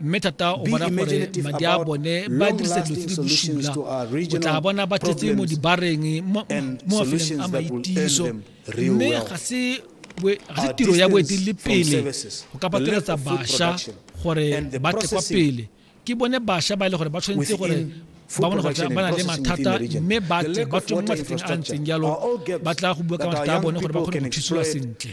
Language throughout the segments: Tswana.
mme thata o bona gore madi a bone ba dirisa dilo tse di bosula o tla bona ba tletse mo dibareng mo mafelong a maitiso mme ga se tiro ya boeteledipele go ka pateletsa bašwa gore ba tle kwa pele ke bone bašwa ba e le gore ba tshwanetse gore ba bona gore ba na le mathata mme ba tle ba tswe mo mathateng a ntseng jalo ba tla go bua ka mathata a bone gore ba kgone go thusiwa sentle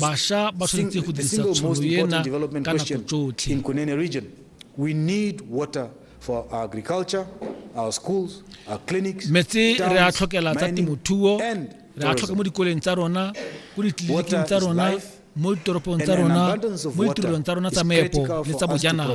Basha ba tshwanetse go dirisa tšhono ena ka nako tsotlhe. Metsi re a tlhokela tsa temothuo, re a tlhoka mo dikoleng tsa rona, ko ditleliniking tsa rona, mo ditoropong tsa rona, mo ditirelong tsa rona tsa meepo le tsa bojanala.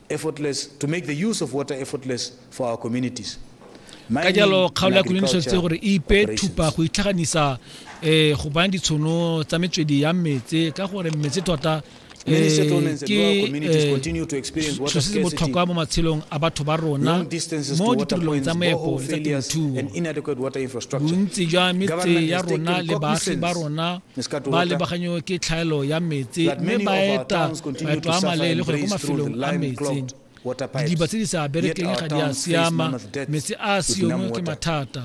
ka jalo kgaolo ya koloni tshwanetse gore e ipe thupa go itlhaganisa um go bana ditshono tsa metswedi ya metse ka gore metse tota eh, ke selo eh, se botlhokwa mo matshelong a batho ba rona mo ditirelong tsa moepo le tsa temothuo bontsi jwa metse ya rona le baagi ba rona ba lebaganywe ke tlhaelo ya metse mme ba eta maeto a maleele go ya ko mafelong a metseng didiba tse di sa berekeng ga di a siama metse a a siongwe ke mathata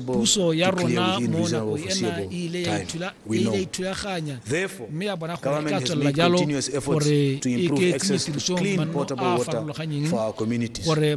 puso ya rona mo nako ena e ile ya e ithulaganya mme ya bona gore e ka tswelela jalo gore e ke tsenye tirisong manno a a farologanyeng gore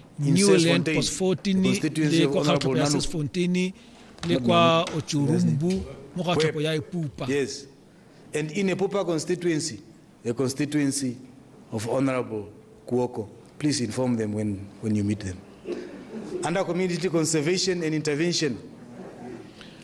newland posfontini le kwa kgatlhopo ya sesfontini le kwa otsurumbu mo ga tlhopo ya epupa yes and in epupa constituency the constituency of honorable kuoko please inform them when, when you meet them under community conservation and intervention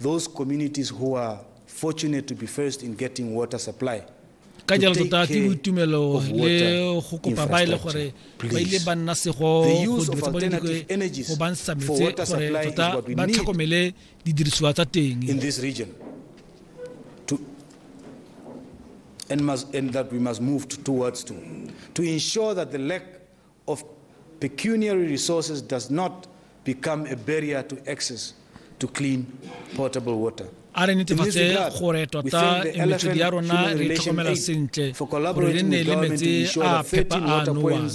Those communities who are fortunate to be first in getting water supply ka jalo tota ke boitumelo le go kopa ba ile e gore ba ile ba nna sego go dirisa bone go ba ntsha metse gore tota ba tlhokomele didirisiwa tsa teng in this region to and must and that we must move towards to to ensure that the lack of pecuniary resources does not become a barrier to access to clean potable water. a re netefatse gore tota metswedi ya rona re tlhokomela sentle gore re nne le metsi a phepa a nowang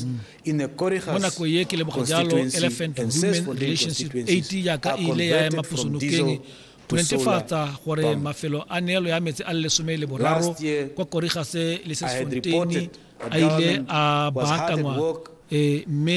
mo nako ye ke leboga jalo elephant women relationship 8 yaka e ile ya ema posonokeng to ne netefatsa solar gore pump. mafelo a neelo ya metsi a le lesome le boraro Last year, kwa korigase le I had sesfonteini reported that a ile government a was hard at baakanngwa work eh, mme